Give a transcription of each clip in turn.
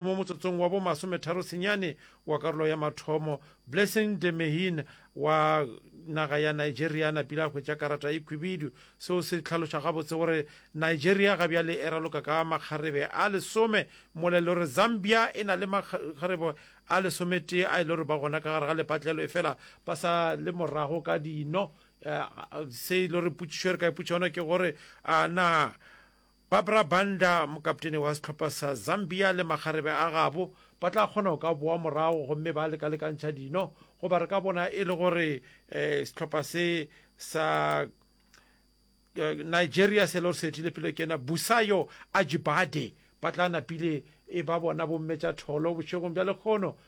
Mo motsotsong wa bo masometharo senyane wa karolo ya mathomo, Blessing Demehin wa naga ya Nigeria a napile a hwetša karata e khwibidu. Seo se hlaloša gabotse gore Nigeria ga bjale e raloka ka makgarebe a lesome mola e le gore Zambia e na le makgarebe a lesometee a e le gore ba gona ka gare ga lepatlelo efela ba sa le morago ka dino. Se e le gore potšišo e re ka ipotša yona ke gore a na Barbra Banda, mokaptene wa sehlopha sa Zambia le makgarebe a gabo ba tla kgona go ka boa morago gomme ba lekalekantšha dino goba re ka bona e le gore um sehlopha se sa Nigeria se le gore se etile pele ke ena Busayo Ajibade ba tla napile e ba bona bommetša tholo bošegong bja lekgono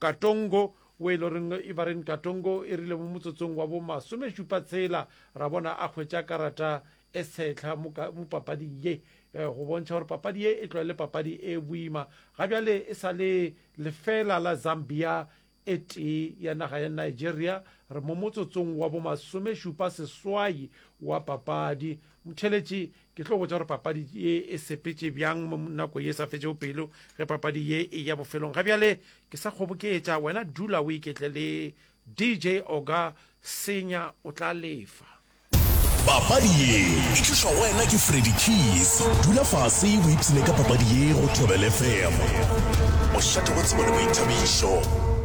Katongo, wo e le goreng e ba reng Katongo e rile mo motsotsong wa bo masomešupa tshela ra bona a hwetša karata e tshehla mo ka, mo papading ye, eh, go bontšha gore papadi ye e tlo le papadi e boima. Ga bjale e sa le lefela la Zambia e tee ya naga ya Nigeria, re mo motsotsong wa bo masomešupa seswai wa papadi. Motheletši Ke tlo botša gore papadi ye e sepetše bjang mo nako ye e sa fetšego pelo, ge papadi ye e ya bofelong. Ga bjale ke sa kgoboketša, wena dula o iketle le DJ Oga Senya o tla lefa. Papadi ye e tlišwa go wena ke Freddy Keys. Dula fase o ipshine ka papadi ye go Thobel FM. Mošate wa tsebo le boithabišo.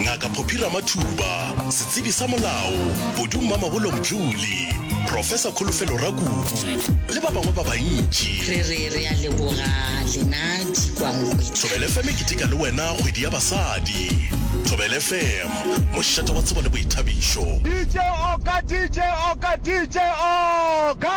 Ngaka Phophi Ramathuba, setsebi sa molao Podu Mmamabolo Mdluli, Profesa Kholofelo Rakubu le ba bangwe ba bantši. Re re re a leboga lena Dikwankwetla. Thobela FM e keteka le wena kgwedi ya basadi. Thobela FM, mošate wa tsebo le boithabišo. DJ Oka DJ Oka DJ Oka.